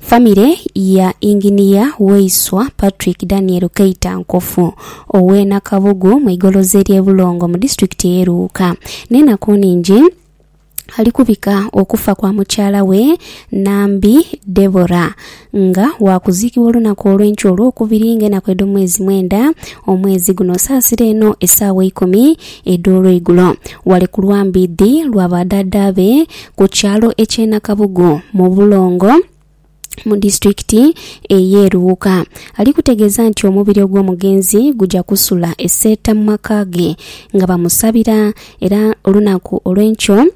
Famire ya Inginiya Waiswa Patrick Daniel Keita Nkofu ow'e Nakabugu mu igoloza ery'e Bulongo mu disitulikiti ey'e Luuka n'enaku nnhingi ali kubika okufa kwa mukyala we Nambi Deborah nga waakuziikibwa olunaku olw'enkya Olwokubiri ng'enaku edh'omwezi mwenda omwezi guno saasira eno esaawa eikumi edh'olweigulo wale ku lwambiidhi lwa badhaadhaabe ku kyalo eky'e Nakabugu mu Bulongo mu disitulikiti ey'e Luuka ali kutegeeza nti omubiri ogw'omugenzi gugya kusula e Seeta mu maka ge nga bamusabira era olunaku olw'enkyo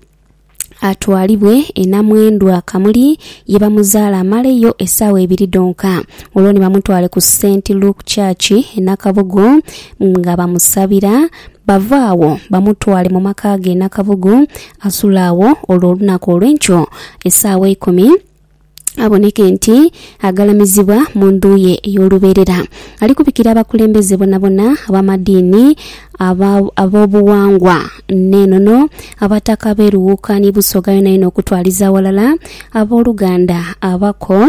atwalibwe e Namwendwa Kamuli ye bamuzaala amaleyo essaawa ibiri dhonka olwo ni bamutwale ku Saint Luke Church e Nakabugu nga bamusabira bave agho bamutwale mu maka ge e Nakabugu Asule agho olwo olunaku olw'enkyo esaawa eikumi aboneke nti agalamizibwa mu ndhu ye ey'olubeerera. Ali kubikira abakulembeze bonabona ab'amadiini, aba- ab'obughangwa n'enono, Abataka ab'erughuuka ni Busoga yonayona okutwaliza aghalala, ab'oluganda, abako,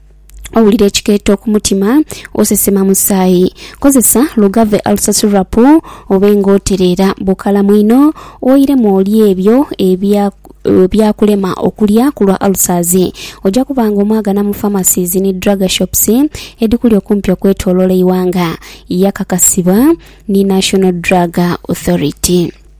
owulira ekikeeto ku mutima, osesema musaayi. Kozesa Lugave Ulcer Syrup obe nga otereera bukalamu inho, oiremu olye ebyo ebya ebyakulema okulya ku lwa ulcers. Oja kuba nga omwagana mu pharmacies ni drug shops edhikuli okumpi okwetoloola eighanga, yakakasibwa ni National Drug Authority.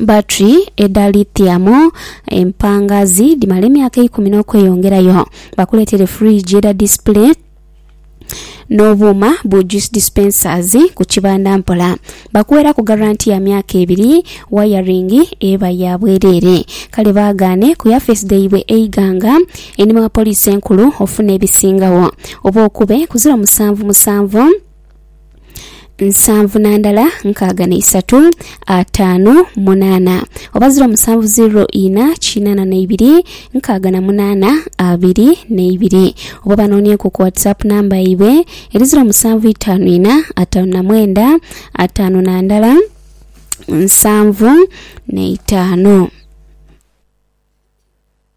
Batri edha lithium empangazi dhimala emyaka eikumi n'okweyongerayo. Bakuleetere fridge edha display n'obuuma bu juice dispensers ku kibanda mpola. Bakuweraku garanti ya myaka ebiri, wayaringi eba ya bwereere. Kale baagaane ku yafeesi dhaibwe e Iganga, einhuma wa poliisi enkulu ofune ebisingagho. Oba okube ku ziro musanvu musanvu. nsanvu na ndala nkaaga na isatu ataanu munaana oba ziro musanvu ziro ina kinaana na ibiri nkaaga na munaana abiri na ibiri oba banoonyeku ku whatsapp namba yaibwe eri ziro musanvu itaanu ina ataanu na mwenda ataanu na ndala nsanvu na itaanu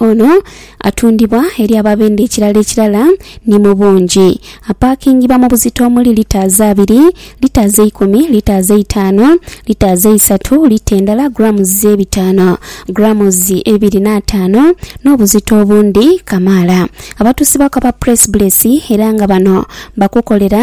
Ono atundibwa eri ababenda ekirala ekirala ni mu bungi. Apaakingibwa mu buzito omuli litaazi abiri, litaazi eikumi, litaazi eitaano, litaazi eisatu, lita endala grammes ebitaano, grammes ebiri n'ataano n'obuzito obundi kamaala. Abatuusibwaku aba Press Bless era nga bano bakukolera.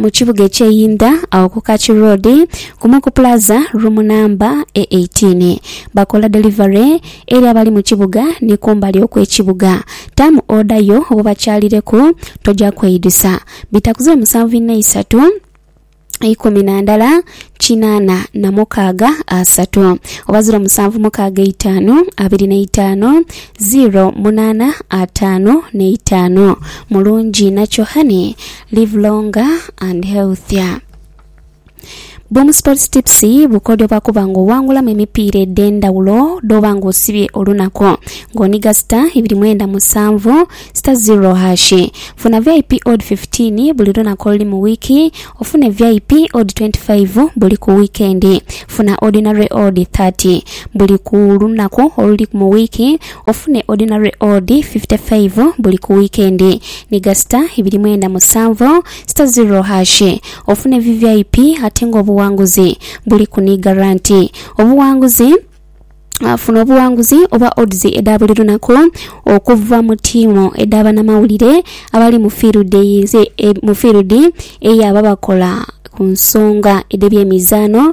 mu kibuga eky'e Inda agho ku Kaki Road kumu ku Plaza room namba e 18. Bakola delivery eri abali mu kibuga ni kumbali okw'ekibuga. Taamu oda yo obo bakyalireku, toja kweidhusa. Bitakuze musanvu inha isatu ikumi na ndala kinaana na mukaaga asatu oba ziro musanvu mukaaga eitaanu abiri na itaanu ziro munaana ataanu n'eitaanu. Mulungi inha kyo honey. Live longer and healthier. Boom Sports Tips bukodyo bwa kuba nga owangulamu emipiira edh'endhawulo dh'oba nga osibye olunaku ng'oniga star ibiri mwenda musanvu star zero hash. Funa VIP odd 15 buli lunaku oluli mu wiiki, ofune VIP odd 25 buli ku wiikendi. Funa Ordinary odd 30 buli ku lunaku oluli mu wiiki. Ofune ordinary odd fifty five buli ku wiikendi ni gasita ibiri mwenda musanvu sita ziro hash. Ofune vvip ate nga obuwanguzi buli ku ni garanti. Obuwanguzi Funa obuwanguzi oba odds edha buli lunaku okuva mu tiimu edha banamawulire abali mu fiirudi eyababakola ku nsonga edh'ebyemizaano.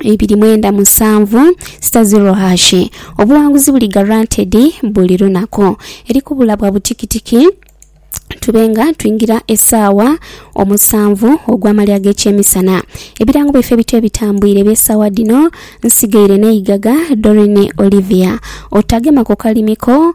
ibiri mwenda musanvu sita ziro hashi. Obuwanguzi buli guaranteed buli lunaku. Eri kubula bwa butikitiki tube nga twingira esaawa omusanvu ogw'amalya ag'ekyemisana. Ebirango byaife ebito ebitambwire eby'esaawa dhino nsigaire n'eigaga Doreen Olivia. Otagema ku kalimi ko